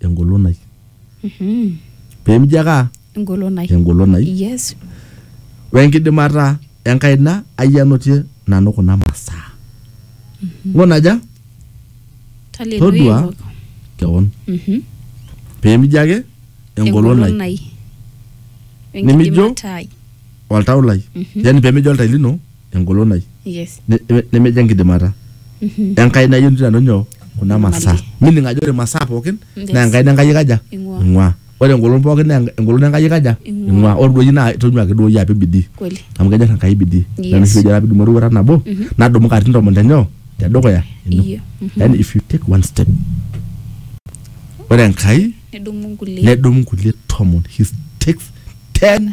engolon ai Mhm. pemijo ake aa Engolon ai. engolon ai Yes. wenkidimata enkaina ai anotie nanu kuna masaa ng'ona aja Todua. Hallelujah. kewon Mhm. pemijo ake engolon ai ai. Nimijo? Wenkidimata ai. oltau lai yani pemijo oltai lino engolon ai Yes. ne- ne- nemejo enkidimata enkai nayieu nanu nyoo kuna masaa mining ajo ore masaa pookin Yes. naa enkaina enkai ikaja Ing'ua. ing'ua ore engolon pookin naa enk- engolon enkai ikaja Ing'ua. ing'ua ore duoyi naa tonyua ake duoyi apik bidii Kweli. amu kenyor enkai bidii Yes. Ina oshi pejo ore pidumu eroruata nabo nadumu katitin tomon tenyoo tedukuya ino Iyo. Mhm. yani if you take one step ore enkai Nedumu nkulie. nedumu nkulie tomon he takes ten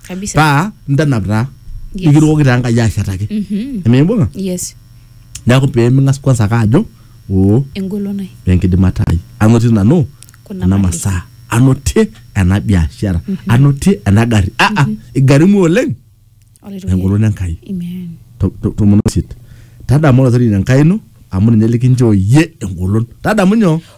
kabisa paa ntanap taa Yes. nikirukoki taa enkai ashetaki Mhm. emimbung'a yes neeku peeming'as kwanza ake ajo oo engolon ai enkidimata ai anotie nanu Kuna kuna mali. masaa anotie ena biashara anotie ena gari aa igarimu oleng Olaitoriani. engolon enkai Amen. To- to- tomon osit tadamu olaitoriani enkai ino amu ninye likinchoo iyie engolon tadamu nyoo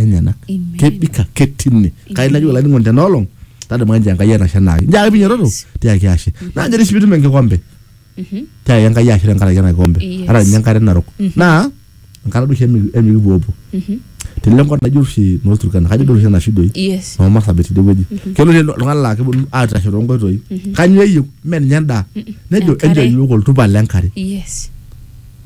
enyenak kebik ake tine kai najo olainining'oni tena olong tadamu ake njoo enkai etasha enaake njoo ake piinyototo tiaki ashe naa njere sii piitum enkikombe tiaki enkai ashe tenkaraki ena kikombe Yes. ata ninye enkare narok naa enkata duo oshi emi- emikipuopuo tele enkop najo oshi noo Turkana kajo doi oshi enashu doi yes noo Marsabit tidie wueji kelo oshi oltung'ani laa keponu aitashe toonkoitoi kanyoo eyieu mee ninye endaa nejo Enkare. enchoo iyiook oltupa lenkare yes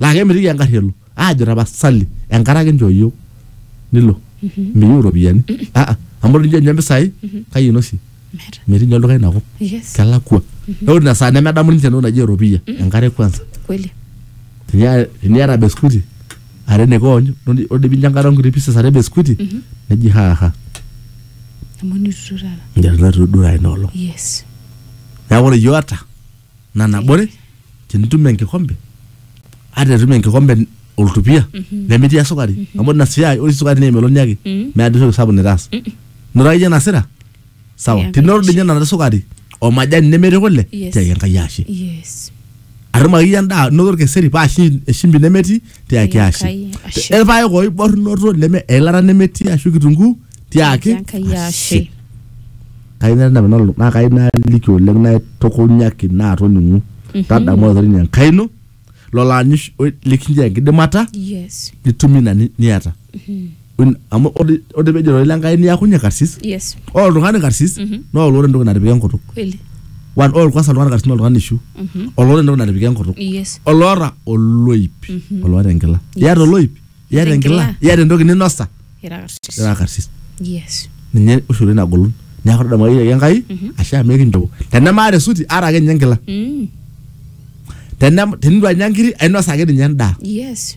laa kemitiki engarri elo aajo tapasali enkare ake inchoo iyiok nilo miyieu iropiyiani Ah, ah, amu tenijo ninye impisai kai inosie Meeta. metii ninye olduka inakop Yes. kelakua neeku ina saa nemedamu ninche entoki naji eropiyia enkare kwanza Kweli. Tenia- teniata beskuti are nikoonyu nodi- odi pinya enkare onkuti pieces are beskuti neji haha Amu nitutu taata. njarna tudura ina olong Yes. neeku ore iyiok ata nanabore tenitum enkikombe ata etum enkikombe oltupia nemetii esukari amu ina siai ore sukari naa emeloni ake Mhm. meeta entoki sapuk nitaas nuraki iyie nasira sawa Yeah, tenitum doi ninye nena sukari omajani nemetii kule Yes. tiaki enkai ashe yes atum akeyie endaa noto orkeseri paa shi- eshimbi nemetii tiaki Ai ashe Enkai, ashe. irpaek oibornoto leme eilata nemetii ashu kitunguu tiaki Enkai ashe. kayieu nai nanu nalo- naa kayieu naliki oleng naitukunyaki naatoning'u tadamu olaitoriani enkai ino lolo aanyu oshi- oiliki nchoo enkidimata Yes. nitum ina ni- niata Un- amu ode- ode pejo ilo lenkai niakunye karsis yes ore oltung'ani karsis Mhm. naa olore entoki natipika enkutuk kweli One, ore olkwasa oltung'ani karsis naa oltung'ani ishu Mhm. olore entoki natipika enkutuk yes oloota oloip Mhm. oloota enkila Yes. iyata oloip iyata enkila enkila. iyata entoki ninosa ira karsis ira karsis yes ninye oshi oleng nagolon neeku tadamu ake enkai Mhm. ashe amu ekinchoo tenemaata esuti aata ake ninye enkila Mm. Tenem- tenitu anya nkiri ainosa ake ninye endaa yes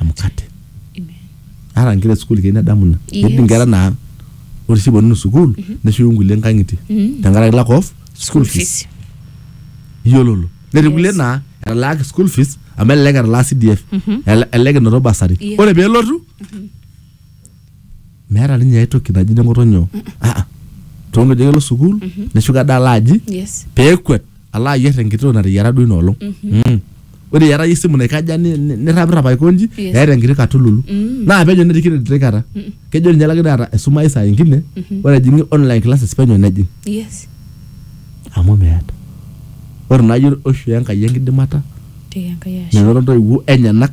emukate ata nkera esukuul keyieu nedamu ina Yes. ketii nkera naa ore sii eponunu sukuul neshuku nkulie nkang'itie tenkaraki lack of school fees iyiololo netii kulie Yes. naa etalaaki school fees amu elelek etalaa CDF ele- elelek enoto basari Yes. ore peelotu meeta ninye ae toki naji neng'otonyo aa toonkeju ake elo sukuul neshuko ade alo aji yes peekwet alo ayier enkitoo nateyiara duo ina olong Mm. ore eeta iyie esimu naikaja ni- ni- nirrapirrap aikonji Yes. eeta enkiti katululu Mm. naa penyo nerikino enkiti kata kejo ninye laki taata esumayu saa ingine ore ejing'i online classes penyo nejing yes amu meeta ore naaji oishoo enkai enkidimata tiai enkai ashe menoto intoiwuo enyenak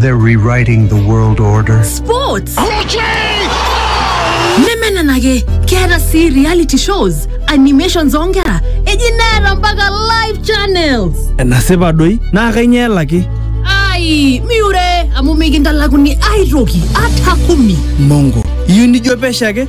They're rewriting the world order. Sports. nemenenake keeta sii reality shows animations oonkera eji neeta mpaka live channels enasipa doi naa kainyoo elaki ai miure amu mikintalakuni aitoki ata kumi mongo iyieu nijo pesho ake